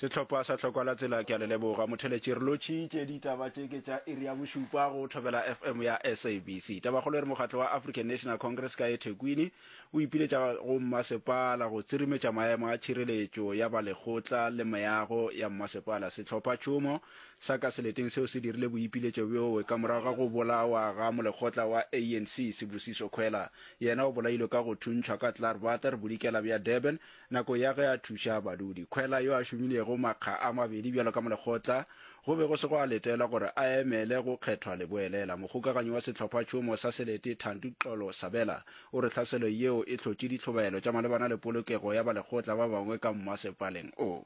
sehlopha sa tlhokwa la tsela ke a le leboga motheletši re lotšhitše ditaba tše ke tša iri ya bošupa go thobela fm ya sabc tabakgolo e re mokgatlo wa african national congress ka ethekwini o ipiletša go mmasepala go tsirimetša maemo a tšhireletšo ya balekgotla le meago ya mmasepala sehlopha tšhomo sa ka seleteng seo se dirile boipiletšo bjowe ka morago ga go bolawa ga molekgotla wa anc sebusiso kgwela yena o bolailwe ka go thuntšhwa ka clarbater bodikela bja durban Nako ya ge a thuša badudi kgwela yo a šomilego makga a mabedi bjalo ka molekgotla, go be go se gwa letelwa gore a emele go kgethwa leboelela. Mokgokaganyi wa sehlophatšhomo sa Selete, Thandi Xolo Sabela, o re tlhaselo yeo e hlotše ditlhobaelo tša malebana le polokego ya balekgotla ba bangwe ka mmasepaleng o.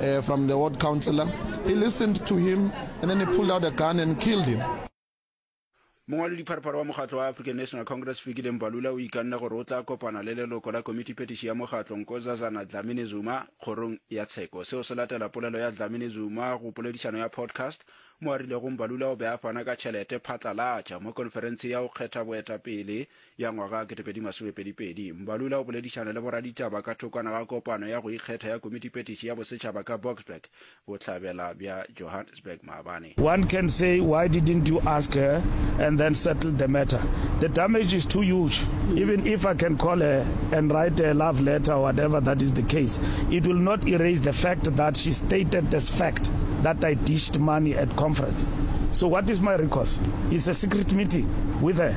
uh, from the ward councillor. He listened to him and then he pulled out a gun and killed him. mongwalo dipharphara wa mokgatlo wa african national congress fikile mbalula o ikanne gore o tla kopana le leloko la komiti petiši ya mokgatlo nkozazana dlamini zuma kgorong ya tsheko seo se latela polelo ya dlamini zuma go poledišano ya podcast mo a rilego mbalula o be a fana ka tšhelete phatlalatša mo konferense ya go kgetha boetapele ya ngwaga 2022, Mbalula o boledišana le boraditaba ka thokwana ga kopano ya go ikgetha ya Komitipetiši ya Bosetšhaba ka Boksburg, Bohlabela bja Johannesburg, maabane. One can say why didn't you ask her and then settle the matter? The damage is too huge, even if I can call her and write her a love letter or whatever that is the case, it will not erase the fact that she stated as fact that I dished money at conference. So what is my recourse? It's a secret meeting with her.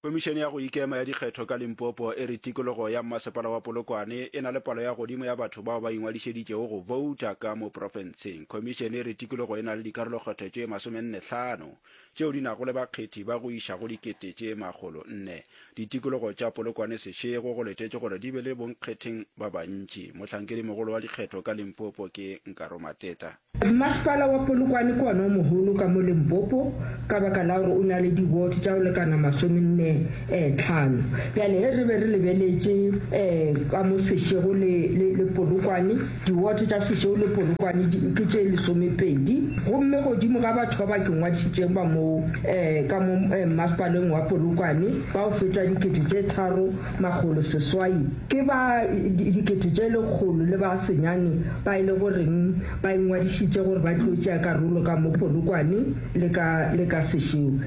Khomišene ya go Ikema ya Dikgetho ka Limpopo e re tikologo ya Mmasepala wa Polokwane e na le palo ya godimo ya batho bao ba ingwadišeditšego go bouta ka mo profenseng. Khomišene e re tikologo e na le dikarolokgetho tše masomenne hlano tšeo di nago le bakgethi ba go iša go dikete tše makgolo nne. Ditikologo tša Polokwane sešego go letetšwe gore di be le bonkgetheng ba bantši. Mohlankedi mogolo wa dikgetho ka Limpopo ke Nkaro Mateta. Mmasepala wa Polokwane ke ona o mogolo ka mo Limpopo ka baka la gore o na le di-ward tša go lekana masomenne um tlhano. Bjale ge re be re lebeletše um ka mo Seshego le, le, le Polokwane, di-ward tša Seshego le Polokwane di, ke tše lesomepedi. Gomme godimo ga batho ba ba ke ngwadišitšego ba moo um ka mo um Mmasepaleng wa Polokwane ba go feta dikete tše tharo, Makgolo seswai ke ba dikete tše lekgolo le ba senyane ba e lego reng ba ingwadišitše gore ba tlo tšea karolo ka mo Polokwane le ka le ka sešeo.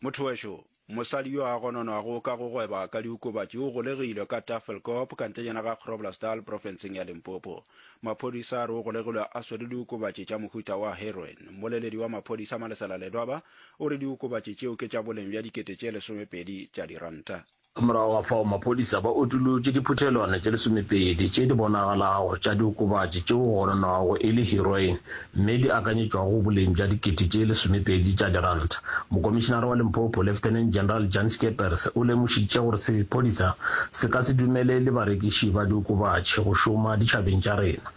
Motho wa šoo. Mosadi yo a gononwago ka go gweba ka diokobatši o golegilwe ka Tafelkop ka ntlenyana ga Groblersdal profenseng ya Limpopo. Maphodisa a re o golegilwe a swere diokobatši tša mohuta wa heroin. Mmoleledi wa maphodisa Malesela Ledwaba o re diokobatši tšeo ke tša boleng bja dikete tše lesomepedi tša diranta. Morago ga fao maphodisa ba utolotše diphuthelwana tše lesomepedi tše di bonagalago tša diokobatši tšeo go gononwago e le heroin mme di akanyetšwago boleng bja dikete tše lesomepedi tša diranta. Mokomišinara wa Limpopo, Lieutenant General Jan Skeepers, o lemošitše gore sephodisa se ka se dumelele barekiši ba diokobatši go šoma ditšhabeng tša rena.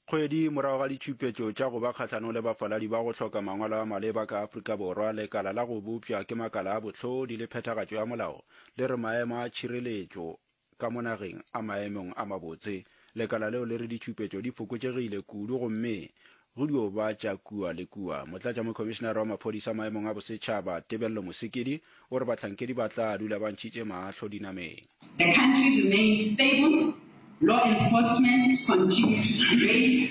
Kgwedi morago ga ditšupetšo tša go ba kgahlanong le bafaladi ba go hloka mangwalo a maleba ka Afrika Borwa, lekala la go bopša ke makala a bohlodi le phethagatšo ya molao le re maemo a tšhireletšo Ka mo nageng a maemong a mabotse, lekala leo le re ditšupetšo di fokotšegile kudu gomme go dio ba tša kua le kua. Motlatšamokhomišenare wa maphodisa maemong a bosetšhaba, Tebello Mosekedi, o re bahlankedi ba tla dula ba ntšhitše mahlo dinameng. The country remains stable, law enforcement continue to prevail.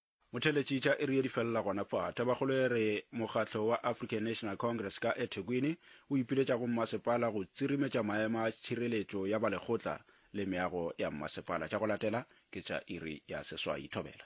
Motheletši tša iri ye di felela gona fa. Tabakgolo e re mokgatlo wa African National Congress ka eThekwini o ipiletša go mmasepala go tsirimetša maema a tšhireletšo ya ba lekgotla le meago ya mmasepala. Tša go latela ke tša iri ya seswai. Thobela.